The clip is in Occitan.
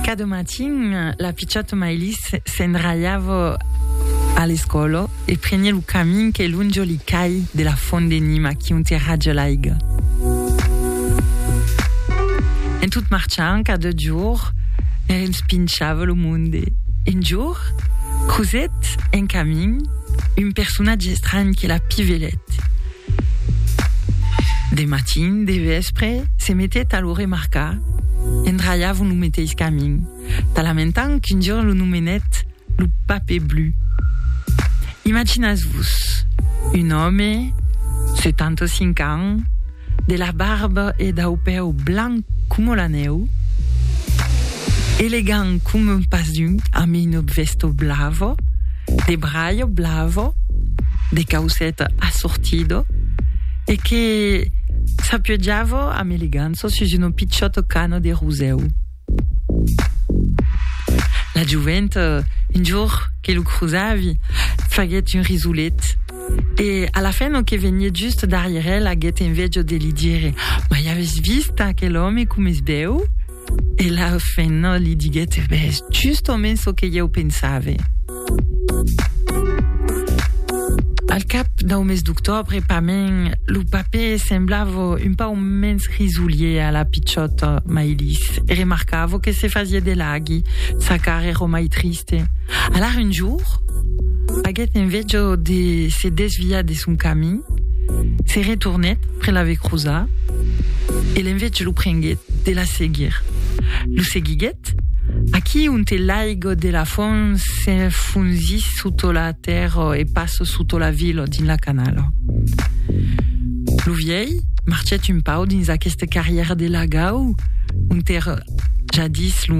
Cada matin, la pichòta Maïlis s'endralhava a l'escòla e prenié lo camin que lonja li cai de la font de Nima qui onte raja l'aiga. En tot marchant, cada jorn, li respinchava lo monde. Un jorn, crosèt en camin un personatge estranh que la pivelèt. De matin, de vèspre, se metèt a lo remarcar, endralhavon lo meteis camin, talamentant qu'un jorn lo nomenèt lo Pape Blu. Imaginatz-vos, un òme, 75 ans, de la barba e dau pèu blanc coma la nèu, elegant coma un pas d'unh, amb una vèsta blava, de braio blavo, de causet assortido, e que s'apiojavo amb elegança sus uno pichòt cano de rosèu. La jovent, un jorn que lo crosavi, faguèt un risolet, e a la fin, lo que venièt just darrièr el aguèt envejo de li dire, Mai aves vist aquel òme com es bèu? E la fenna li diguèt, E ben, es justament çò que ieu pensave. Al cap dau mes d'octòbre, pament, lo papè semblava un pauc mens risolier a la pichòta Maïlis e remarcava que se fasiá de laghi, sa cara èra mai triste. Alara un jorn, aguèt enveja de se desviar de son camin, se retornèt pr'e l'ave cruzar e l'enveja O prenguet de la seguir. Lo seguiguet, aquí onte l'aigo de la font se fonzís soto la tèrra e passo soto la vila dins la canala. Lo vièi marchèt un pau dins aqueste carrièr de lagau onte èra jadís lo